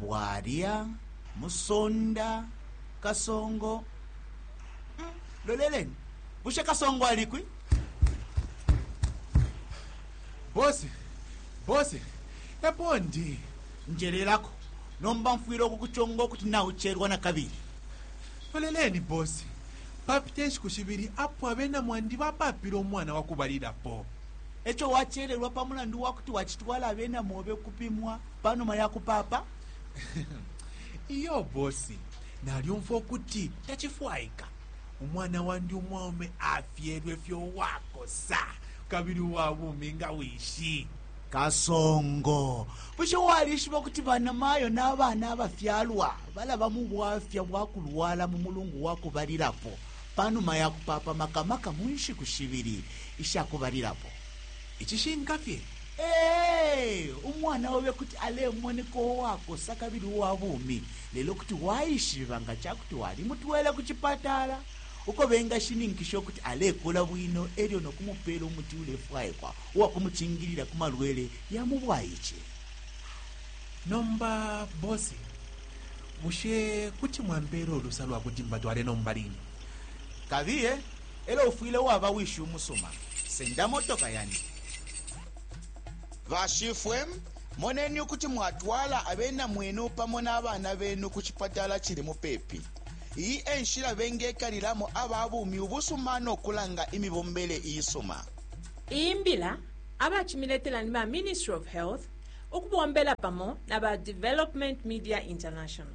Bwalya, Musonda, Kasongo. Hmm, loleleni. Bushe Kasongo alikwi? Bosi, bosi, epo ndi. Njelelako. Nomba mfwile ukukuchonga ukuti nauchelwa na kabili. Loleleni, bosi. Papite nshiku shibili apo abena mwandi bapapile umwana wakubalilapo. Echo wachelelwa pa mulandu wakuti wachitwala abena mobe kupimwa. pa numa ya kupaapa? Iyo bosi, nalyumfwa ukuti tacifwaika. Umwana wandi umwaume afyelwe fye uwakosa kabili uwa bumi nga wishi. Kasongo, bushe walishiba ukuti banamayo na bana abafyalwa balaba mu bwafya bwa kulwala mu mulungu wa kubalilapo pa numa ya kupaapa, maka maka mu nshiku shibili isha kubalilapo? Icishinka fye, ee, umwana obe kuti alemoneka uwakosa kabili uwa bumi, lelo kuti waishiba nga ca kuti walimutwele ku cipatala uko bengashininkisha ukuti alekula bwino e lyo no kumupeela umuti ulefwaikwa uwa kumucingilila ku malwele ya mu bwaice. Nomba bosi, bushe kuti mwampeela ulusa lwa kuti mbatwale nomba line? Kabiye. elo ufwile waba wishi umusuma. Senda motoka yandi. Bashifwe, moneni ukuti mwatwala abena mwenu pamo na bana benu ku cipatala cili mupepi. Iyi e nshila bengekalilamo aba bumi ubusuma no kulanga imibombele iisuma. Iyi mbila abacimiletela ni ba Ministry of Health ukubombela pamo na ba Development Media International.